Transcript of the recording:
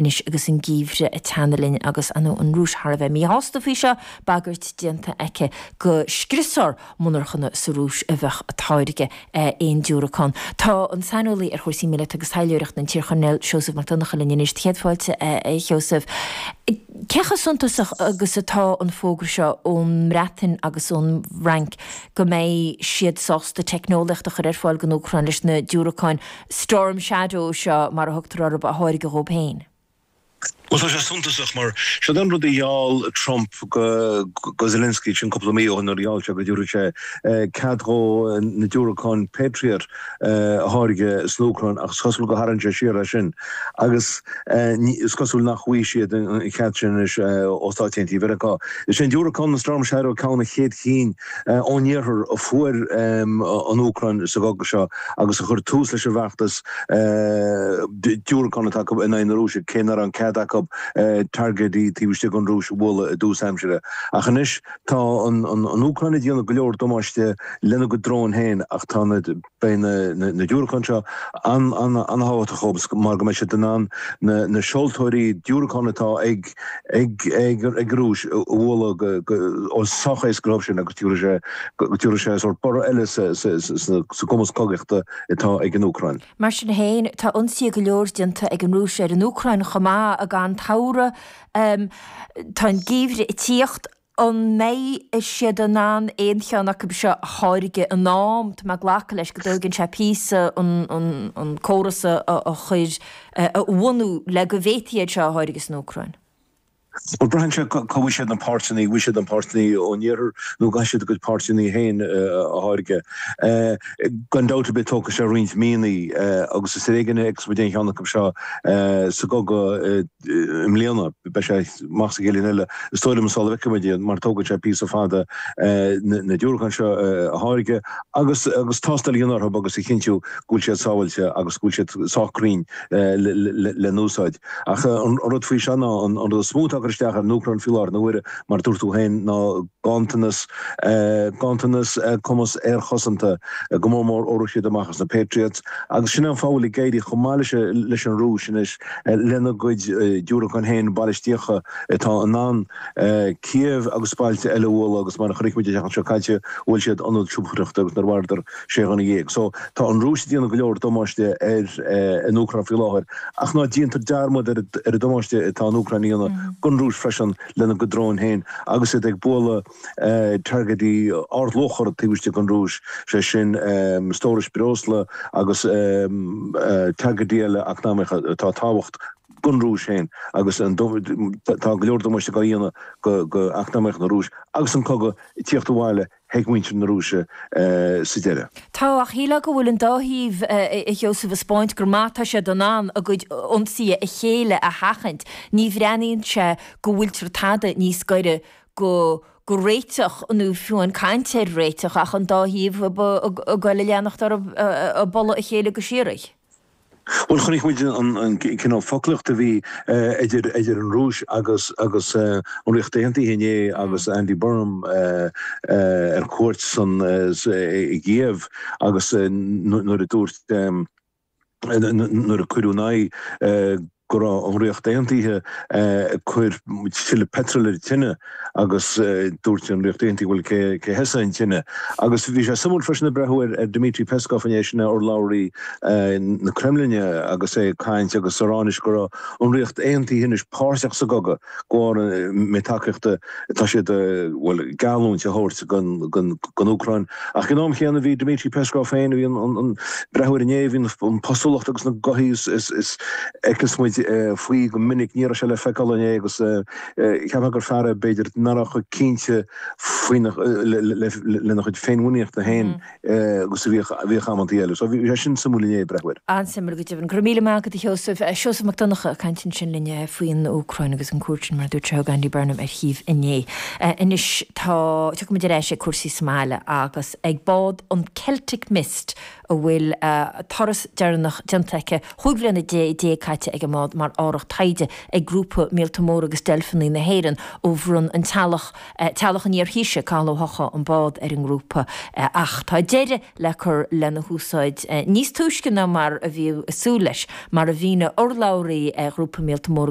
Anois agus an geimhreadh ag teannadh linn agus an Rúis thar a bheith míshásta faoi seo, bagairt déanta aici go scriosfar monarchana sa Rúis a bheadh ag táirgeadh aon diúracán, tá an saineolaí ar chúrsaí míleata agus taidhleoireachta, an t-iarChoirnéal Seosamh Mac Donnacha linn anois. Do chéad fáilte, a Sheosaimh. Cé chomh suntasach agus atá an fógra seo ón mBreatain agus ón bhFrainc go mbeidh siad sásta teicneolaíocht a chur ar fáil don Úcráin leis na diúracáin Storm Shadow, seo mar a thugtar orthu, a tháirgeadh dhóib féin. Bhuel, tá sé suntasach, mar seod an rud a gheall Trump go Zelensky, sin cúpla mí ó shin, nuair a gheall sé go dtabharfadh sé cead dhó na diúracáin Patriot a tháirgeadh san Úcráin, ach is cosúil gur tharraing sé siar as sin, agus is cosúil nach bhfaighidh siad an cead sin anois ó Stáit Aontaithe Mheiriceá. Is é an diúracán, an Storm Shadow, ceann de na chéad chinn ón Iarthar a fuair an Úcráin sa gcogadh seo agus a chuir tús leis an bhfeachtas diúracán atá acu in aghaidh na Rúise, cé nach raibh aon chead acu targaidí taobh istigh den Rúis a bhualadh i dtús aimsire. Ach anois tá an Úcráin ag déanamh go leor damáiste lena gcuid dróin féin ach tá na. Beidh na diúracáin seo an-thábhachtach dhóibh mar go mbeidh siad in ann na seoltóirí diúracán atá ag an Rúis a bhualadh ó sách i bhfad uathu agus tiúrfaidh sé sórt borradh eile sa gcumas cogaíochta atá ag an Úcráin. Mar sin féin, tá ionsaithe go leor déanta ag an Rúis ar an Úcráin chomh maith, gan dabht. Tá an geimhreadh ag tíocht. An mbeidh siad in ann aon cheann acu seo a tháirgeadh in am tá mé ag glacadh leis go dtógann sé píosa an córas a chuir a bhunú le go bhféadfaí iad seo a tháirgeadh san Úcráin? Bhuel, braitheann sé cá bhfaighidh siad na páirteanna, an bhfaighidh siad na páirteanna ón iarthar nó an gcaithfidh siad a gcuid páirteanna féin a tháirgeadh. Gan dabht ar bith tógfaidh sé roinnt míonna agus is ar éigean a fheicfeas muid aon cheann acu seo sa gcogadh. i mbliana. Beidh sé amach sa gcéad bhliain eile is dóigh liom sula bhfeicfimid iad mar tógfaidh sé píosa fada na diúracáin seo a tháirgeadh agus tástáil a dhéanamh orthu agus a chinntiú go bhfuil siad sábháilte agus go bhfuil siad sách cruinn le n-úsáid. Ach an rud faoi seo ná an rud is mó atá ag cur isteach ar an Úcráin faoi láthair na huaire, mar a dúirt tú féin, ná gantanas, gantanas cumas aerchosanta, go mór mór ó rith siad amach as na Patriots agus sin é an fáth a bhfuil ag éirí chomh maith leis an Rúis anois. lena gcuid diúracán féin balaistíocha atá in ann Kiev agus bailte eile a bhualadh agus mar a chonaic muid an tseachtain seo caite bhuail siad ionad siopadóireachta agus mharaíodar sé dhuine dhéag. So tá an Rúis ag déanamh go leor damáiste ar an Úcráin faoi láthair ach ná déantar dearmad ar an damáiste atá an Úcráin a dhéanamh don Rúis freisin lena gcuid dróin féin agus iad ag bualadh targaidí ardluachra taobh istigh den Rúis, sé sin stórais breosla agus targaidí eile eacnamaíocha atá tábhachtach don Rúis féin agus tá go leor damáiste á dhéanamh do eacnamaíocht na Rúis agus an cogadh ag tíocht abhaile ag muintir na Rúise sa deireadh. Tá, ach shílfeá go bhfuil an dá thaobh, a Sheosaimh, a 'spáint go maith atá siad in ann a gcuid ionsaithe ar a chéile a sheachaint. Ní bhreathnaíonn sé go bhfuiltear tada níos gaire go go réiteach, nó fiú aon chaint ar réiteach, ach an dá thaobh ag gabhail a leanacht ar ag bualadh a chéile go síoraí. Bhuel, chonaic muid an cineál foclaíochta a bhí idir an Rúis agus an Ríocht Aontaithe inné agus Andy Burnham ar cuairt i gCiev agus nuair a dúirt nuair a cuireadh ina aghaidh go raibh an Ríocht Aontaithe ag cur tuilleadh peitril ar an tine agus dúirt an Ríocht Aontaithe bhuel cé cé a thosaigh an tine? Agus bhí sé suimiúil freisin ag breathnú ar Dmitri Peskov inné, sin é urlabhraí na Creimlinne agus é ag caint agus a rá anois go raibh an Ríocht Aontaithe anois páirteach sa gcogadh. mar gheall ar an méid tacaíochta atá siad bhuel geallúint a thabhairt don don don Úcráin ach san am céanna bhí Dmitri Peskov féin a bhí ag ag ag breathnú air inné an an postúlacht agus na gothaí a a a fheiceas muid faoi go minic ní raibh sé le feiceáil inné agus cheapfá gur fear é b'fhéidir nach raibh chomh cinnte faoi lena chuid féinmhuiníne féin agus a bhíodh amantaí eile. So bhí sé sin suimiúil inné, breathnú air. An-suimiúil go deimhin. Go raibh míle maith agat, a Sheosaimh. Seosamh Mac Donnacha ag caint ansin linn faoin Úcráin agus an chuairt sin, mar a dúirt sé, a thug Andy Burnham ar Chív inné. Anois tá, tiocfaimid ar ais ag cúrsaí sa mbaile agus ag bád an Celtic Mist a bhfuil a turas deireanach déanta aici, cúig bliana déag caite ag an mbád mar árthach taighde ag Grúpa Míolta Móra agus Deilfeanaí na hÉireann ó bhronn an teaghlach Teaghlach an iar-Thaoisigh, Cathal Ó hEochaidh, an bád ar an ngrúpa ach tá deireadh le cur lena húsáid níos túisce ná mar a bhí súil leis, mar a mhínigh urlabhraí Ghrúpa Míolta Móra,